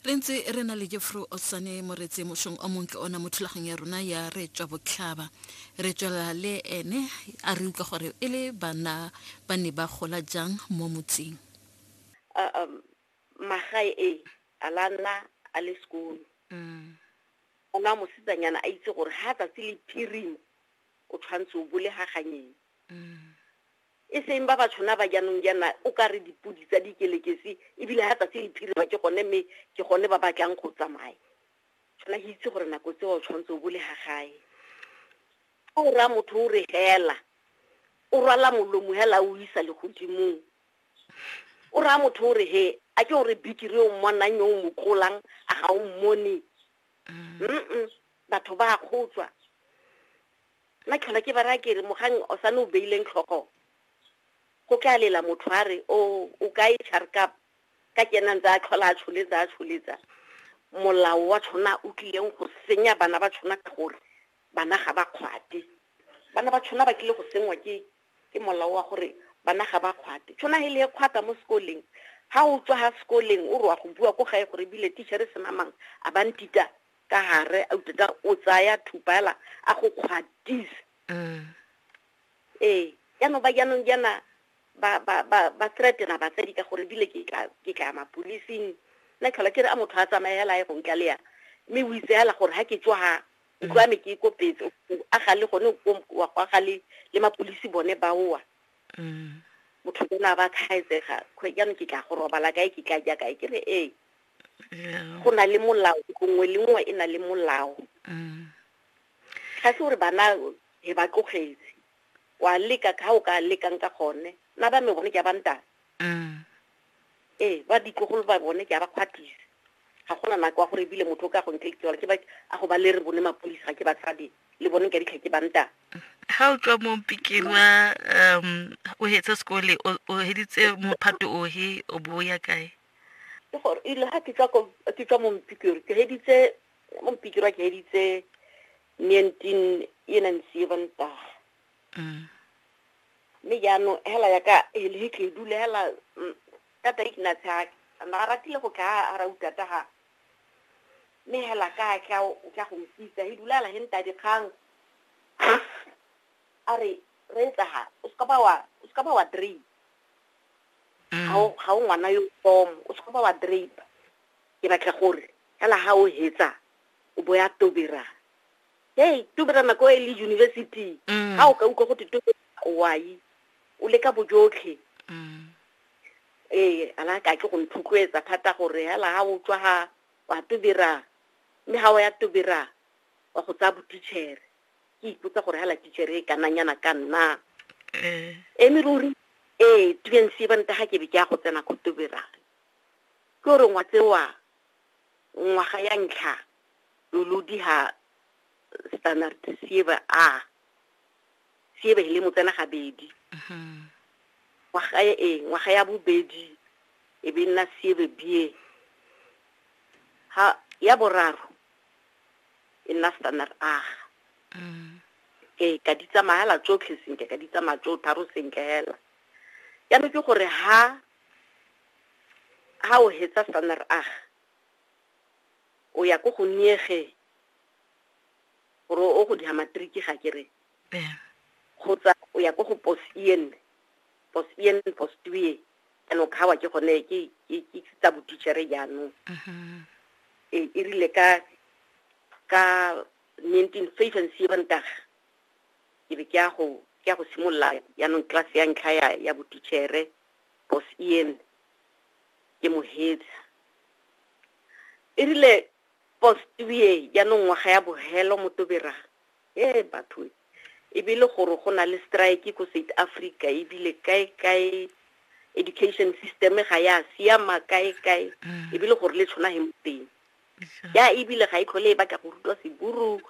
re ntse re na le jeffro osane moretse mosong o montle ona mo thulagong ya rona ya re tswa botlhaba re tswela le ene a re utlwa gore e le bana ba ne ba gola jang mo motseng um, magae e a la nna a le sekolo mm. ona mosetsanyana a itse gore ga tsatsi le phirimo o tshwanetse o bole ga ganyeng e seng ba batshona ba jaanong jaana o ka re dipodi tsa dikelekesi ebile ga tsatsi le phirima ke gone mme ke gone ba batlang go tsamaya tshwana ke itse gore nako tseo o tshwanetse o bole ga gae o raya motho o re hela o rwala molomo hela o isa legodimong o raya motho o re he a ke o re bikiri o mmonang yo o mo tlolang a ga o mmone mm batho ba a kgotswa Nna tlhola ke ba raya ke re mogang o sane o beileng tlhogo go tla lela motho a re o o ka e charkap ka ke ena ntse a tlhola a tsholetsa a tsholetsa molao wa tshona o tlileng go senya bana ba tshona ka gore bana ga ba kgwate bana ba tshona ba tlile go sengwa ke ke molao wa gore bana ga ba kgwate tshona he le e kgwata mo sekoleng ha o tswa ha sekoleng o roa go bua ko gae gore bile teacher se namang a ba ntita ka gare a utlwa tsa o tsaya thupa ela a go kgwatisa mm. ee jaanong ba jaanong jaana ba ba ba ba threatena batsadi ka gore bile ke tla ke tla mapolising nna tlhola ke re a motho a tsamaye hela ye go ntla le ya mme o itse hela gore ha ke tswa ha ntlo ya me ke ikopetse a ga le gone wa go aga le le mapolisi bone ba oa mm. motho ke na ba thaetsega jaanong ke tla go robala kae ke tla ja kae ke re ee go na le molao nngwe le nngwe e na le molao mm. ga se gore bana he ba tlogetse wa leka ka o ka lekang ka gone na ba me bone ke ba ntana mm. ee ba ditlogolo ba bone ke ba kgwathisa ga gona nako wa gore ebile motho o ka go ntle ke ba a go ba le re bone mapodisa ga ke ba tshabe le bone ka ditlha ke ba ntana ga o tswa mo pikeng wa um o hetsa sekole o heditse mophato ohe o bo ya kae ke gore ile ga ke tla ko ke tla mo mpikiro ke heditse mo mpikiro ke heditse 19 ye nang seven ta mm. me ya no hela ya ka e le ke dule hela mm, ka ta ikna tsa na ratile go ka ara uta ta ha me hela ka ka ka go mpitsa he dula la henta di khang are re tsa ha o ska ba wa o ska ba wa dream ga o ga o ngwana yo tomo o se ba wa drape ke batla gore fela ga o hetsa o bo ya tobera hey tobera nako e le university ga o ka utlwa go te tobera wai o le ka bojotlhe ee ala ka ke go nthutloetsa thata gore fela ga o tswa ga wa tobera mme ga o ya tobera wa go tsaya botitšhere ke ipotsa gore hala tichere e kananyana ka nna eh. eme ruri ee tubense e banta ga ke be ke ya go tsena ko toberare ke gore ngwa tsewa ngwaga ya ntlha lolodi ga standard siebe a siebe le motsena gabedi mm-hmm. ngwaga e ee ngwaga ya bobedi e be nna siebe bie ha ya boraro e nna standard aga mm. ee ka di tsamaya la tsotlhe sentle ka di tsamaya tso tharo sentle hela jaanong ke gore ha ha o hetsa standard aga o ya ko go niege gore o go diha matriki ga ke re kgotsa o ya ko go pos en pos en pos tue jaanong kgawa ke gone ke tsa botichere jaanong mm-hmm. e, e rile ka ka nineteen five and seven taga ke be ke ya go ke ya go simolola jaanong class ya ntlha ya ya botichere bos en ke mohetsa e rile post ye jaanong ngwaga ya bogelo motobera ee batho e be le gore go na le strike ko south africa ebile kae kae education system ga ya siama kae kae mm. ebile gore le tshwana he moteng ya ebile ga e tlhole e batla go rutwa seburu